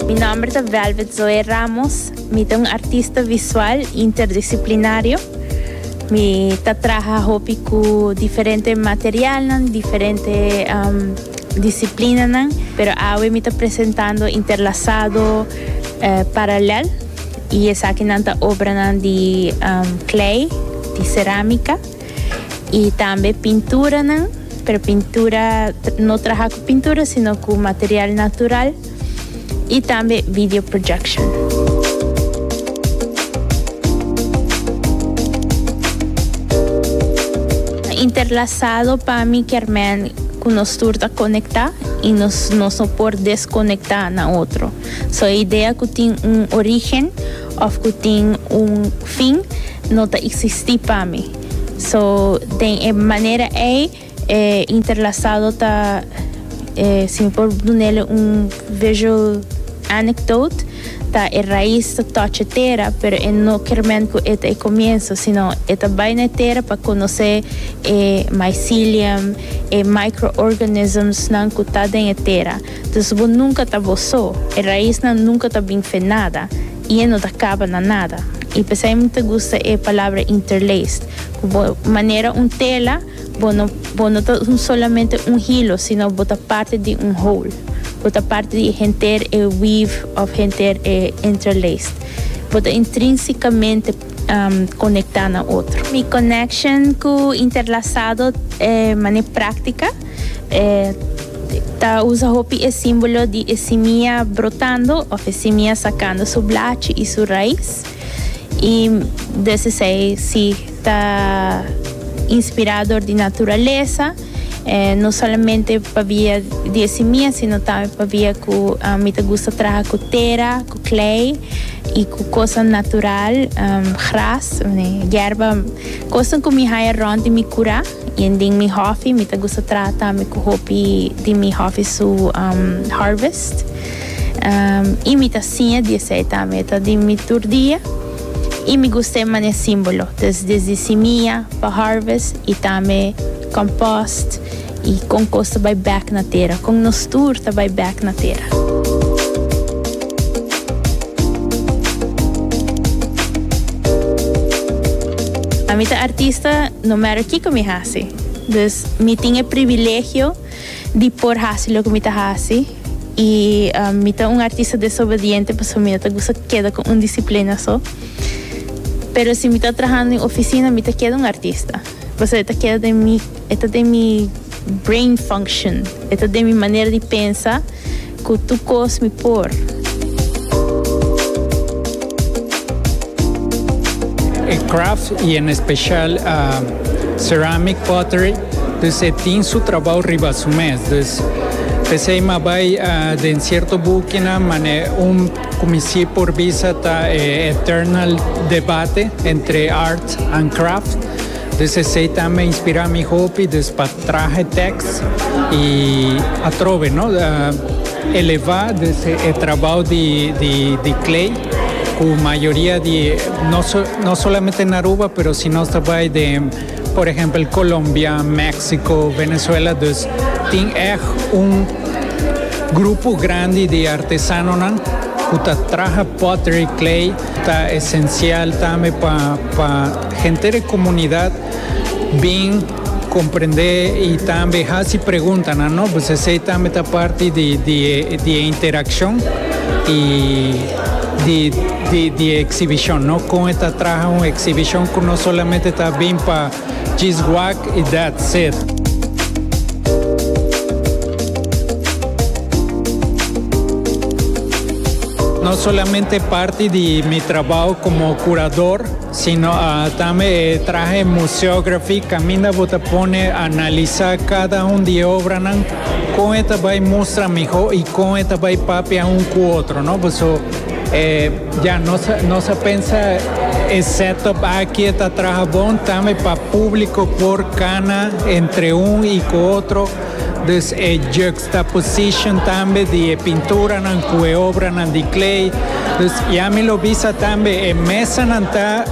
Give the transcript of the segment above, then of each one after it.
Mi nomber ta Velvet Zoe Ramos. Mi ta un artista visual interdisciplinario. Mi ta traha hopi cu diferente materialnan, diferente um, disciplinanan, pero awe mi ta presentando interlasado, eh, paralel, y esakinan ta obranan di um, klei, di cerámica. y tambe pinturanan, pero pintura no traha cu pintura sino cu material natural y tambe video projection. interlazado pa mi kermen ku nos tur ta konekta i nos nos no por deskonekta na otro. So e idea ku tin un origen Of cu tin un fin no ta existi pa mi. So, den e manera ey e interlasado ta, si mi por dunele un visual anecdote, ta e raiz ta touch e tera, pero e no kermen cu e ta e comienzo, sino e ta bay na e tera pa conoce e mycelium, e microorganismsnan cu ta den e tera. Dus bo nunka ta bo so, e raisnan nunka ta bin fe nada, i e no ta kaba na nada. I p'esei mi ta gusta e palabra interlaced, ku bo manera un tela, bo no bo no ta un solamente un hilo, sino bo ta parti di un whole. Bo ta parti di henter e weave òf henter e interlaced. Bo ta intrínsikamente konektá na otro. Mi connection ku interlasado e mane práktika. E ta usa hopi e símbolo di e simia brotando of e simia sakando su blachi i su rais. I des esei si ta inspirá dor di naturalesa, no solamente pabia di e simia sino tambe pabia ku mi ta gusta traha ku tera, ku klei i ku kosnan natural, gras, yerba, kosnan ku mi haya rònt di mi kura. Yen den mi hòfi mi ta gusta trata mi ku hopi di mi hòfi su harvest. I mi ta siña di esei tambe. E ta di mi tur dia. I mi gusta e mane símbolo. Entonces desdi simia pa harvest i tambe kòmpost i kon kos ta bai bèk na tera. Kon nos tur ta bai bèk na tera. Ami ta artista no matter kiko mi hasi. Dus mi tin e privilegio di por hasi loke mi ta hasi. I mi ta un artista desobediente pasobra mi no ta gusta keda ku un disiplina so. Pero si mi ta trahando den oficina mi ta keda un artista, pasobra e ta keda den mi E ta den mi brain function. E ta den mi manera di pensa cu tur cos mi por. E craft y en especial ceramic pottery dus e tin su trabao riba su mes. Dus pesey mi a bay den cierto bukinan mane un cu mi si por bisa ta e eternal debate entre art and craft. Dus esei ta me inspirá mi hopi, dus pa traha tèks i atrobe no elevá dus e trabou di Clay ku mayoria di no solamente na Aruba pero si nos ta bai den por ehèmpel Colombia, Mexico, Venezuela dus tin èg un grupo grandi di artesanonan ku ta traha pottery, clay ta esencial tambe pa. Henter e komunidat bin komprendé i tambe hasi preguntanan, no pues esei tambe ta parti di e interakshon i di e eksibishon, no kon e ta traha un eksibishon ku no solamente ta bin pa djis wak i dats it. No solamente parti di mi trabou komo kurador. Sino tambe e trahe museography caminda bo ta pone analisa cada un di e obranan con e ta bay mustra miho y con e ta bay papia un cu otro no paso ya nos a pensa e setup aki ta traha bon tambe pa publico por cana entre un y cu otro dus e Ta position tambe di e pinturanan cu e obranan di clay. Dus ya mi lo bisa tambe e mesanan ta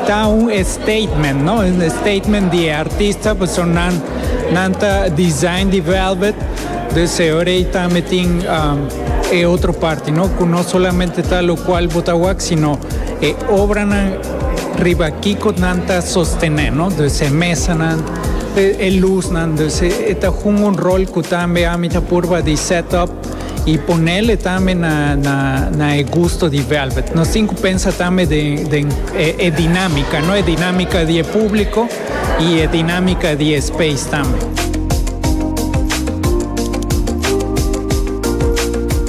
ta un statement, no? Un statement di e artista pasobra nan nan ta design di velvet. Dus e ora ey tambe tin e otro parti, no? Cu no solamente ta locual bo ta wak sino e obranan riba kico nan ta sostene, no? Dus e mesanan. E lusnan dus e ta hunga un rol cu tambe ami ta purba di set up y ponele tambe na e gusto di Velvet. Nos tin cu pensa tambe den e dinamica, no? E dinamica di e publico y e dinamica di e space tambe.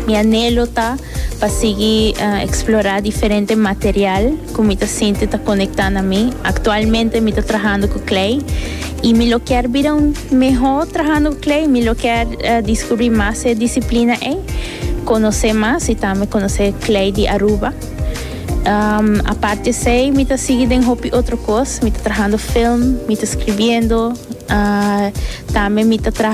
Mi anhelo ta pa sigui eksplorá diferente material ku mi ta sinti ta konektá na mi. Aktualmente mi ta trahando ku klei i mi lo kier bira un mihó trahando ku klei. Mi lo kier diskubrí mas e disiplina ei, konosé mas i tambe konosé klei di Aruba. Aparte esei mi ta sigui den hopi otro kos, mi ta trahando film, mi ta skribiendo, tambe mi ta traha.